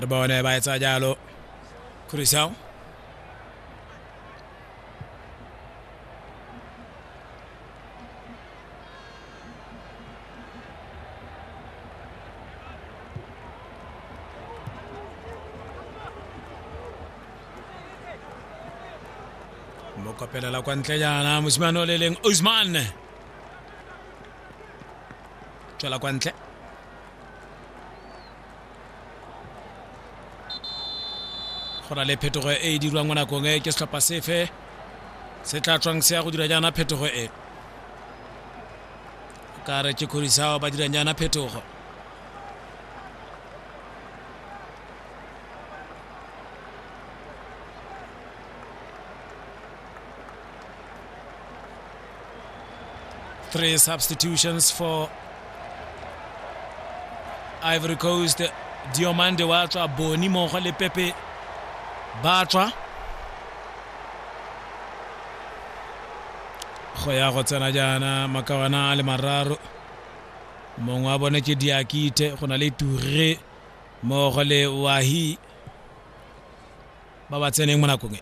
re bone ba etsa jalo crucial mo kopelela kwa ntle jaana mosimane o le leng osman tswela kwa ntle go na le phetogo e e dirwang mo nakong e ke setlhopha sefe se tla tswang se ya go dira jaana phetogo e ka re ke kgorisao ba dirang jaana phetogo Three substitutions for Ivory Coast. Diomande wa tswa Boni mogo le Pepe ba tswa go ya go tsena jaana makawana a le mararo mongwe wa bone ke diakite go na le ture mogo le wahi ba ba tseneng mo nakong e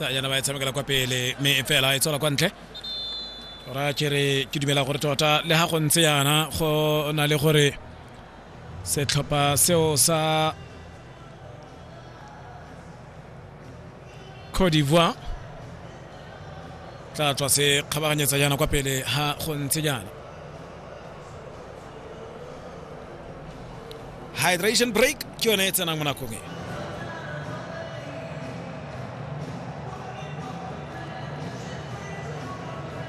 tsa yana ba e tshamekela kwa pele mme fela e tswela kwa ntle ra kere ke dumela gore tota le ga go ntse yana go na le gore setlhopha seo sa Cote d'Ivoire tla tswa se kgabaganyetsa jaana kwa pele ha go ntse jaana hydration break ke yone e tsenang mo nakong e